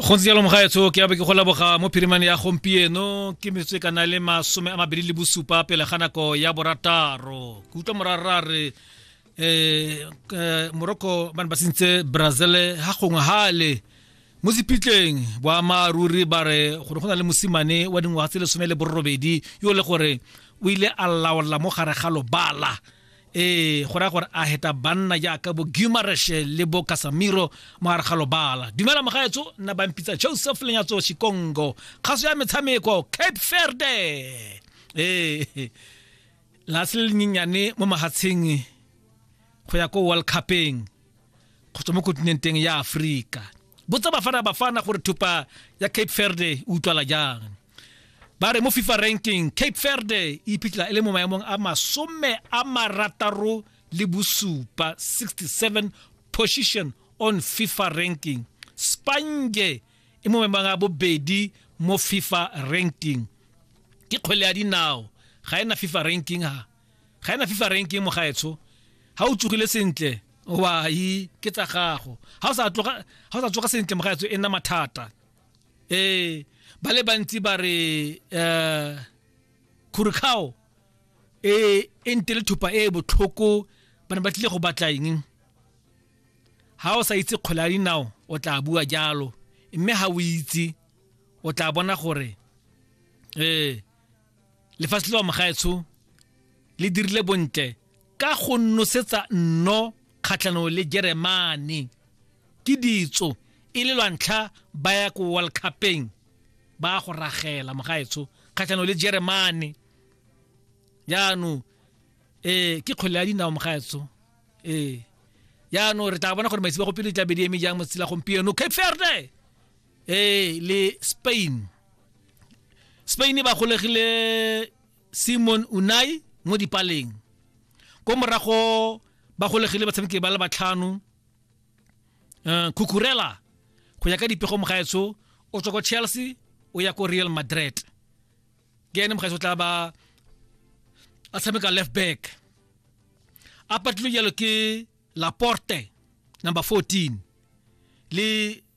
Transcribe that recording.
go ntse jalo mogaetsho ke abe ke go laboga mo phirimane ya gompieno ke metsotso e ka na le masome a mabedi le bosupa pele ga nako ya borataro ke utlwa morara re um morocco ba ne ba sentse brazil ga gongwe gale mo sepitleng boammaaruri ba re gore go na le mosimane wa dingwaga tse lesome le borobedi yo le gore o ile a laola mo gare ga lobala ee go raya gore a heta banna jaaka bo gumareshe le bo kasamiro mogare ga lobala dumela mogaetso nna bampitsa joseph lenyatso chikongo kgaso ya metshameko cape ferde ee lase le lenyenyane mo mahatsheng go ya ko world cupeng go tswa mo kontinenteng ya aforika botsa bafana bafana gore thupa ya cape ferde e utlwala jang ba re mo fifa ranking cape verde e iphitlhela e le mo maemong a masome a marataro le bosupa 67 position on fifa ranking spange e mo maemong a bobedi mo fifa ranking ke kgwele ya dinao ga ena fifa ranking ha ga ena fifa ranking mo gaetsho ha o tsogile sentle wai ke tsa gago ha o sa tsoga sentle mo gaetsho e nna mathata ee ba le bantsi ba re um khurikgao e e nte le thupa e e botlhoko ba ne ba tlile go batla eng ha o sa itse kgwele ya dinao o tla bua jalo mme ha o itse o tla bona gore ee lefatshe le wa mogaetsho le dirile bontle ka go nosetsa nno kgatlhanong le jeremane ke ditso e le lwantlha ba ya ko world cupeng ba go ragela mogaetsho kgatlhanong le jeremane jaanong ee ke kgwele ya dinao mogaetsho ee jaanong re tla bona gore maitsebo go pele tla be di eme jang mo tsela gompieno cape verde ee le spain spain ba golegile simon unai mo dipaleng ko morago ba golegile batshameki ba le batlhano um kukurela go ya ka dipego mogaetso o tswa ko chelsea o ya ko real madrid ke ene mogaetso o tla ba a tshameka left back a patlilwe jalo ke laporte number 14 le